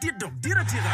dit dok dit atika.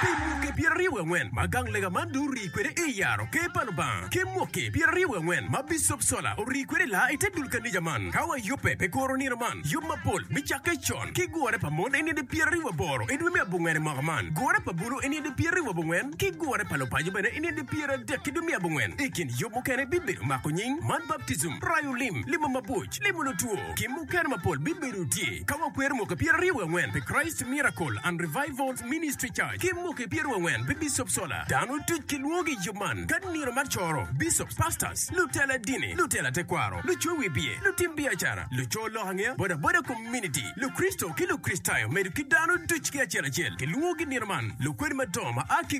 Pi muke pyeraryo wiye angwen ma gang lega man dong orii kwede i yaro Ker pa Lubanga, ki muke pyeraryo wiye angwen ma Bicop Sola orii kwede laa i te dul kanija man, ka wayubbe pi kuro nino man, yub mapol me cakke con, ki gure pa mon i nino pyeraryo waboro i dwe me abongwen i mwaka man, gure pa bulu i nino pyeraryo wabongwen, ki gure pa lupaco bene i nino pyeradek i dwe me abongwen. I kin yub mukene bibedo mako nying, man baptism, rayo lim, limo mabuc, limo lutwo, Gin mukene mapol bibedo tye ka wakwero mwaki pyeraryo wiye angwen pi Christ Miracle and Revivals Ministry Church ki mwaki pyeraryo wiye angwen pi Bishop Solar. Dano duc kilwongo i yub man ka nino mar coro, Bishops, Pastors, lutela dini, lutela tekwaro, lucoyo wi biye, lutim biacara, lucoyo lok angeya, bodaboda community, Lukricito ki Lukricitayo medo ki dano duc ki acel acel kilwongo gi nino man. Lukwene madongo ma a ki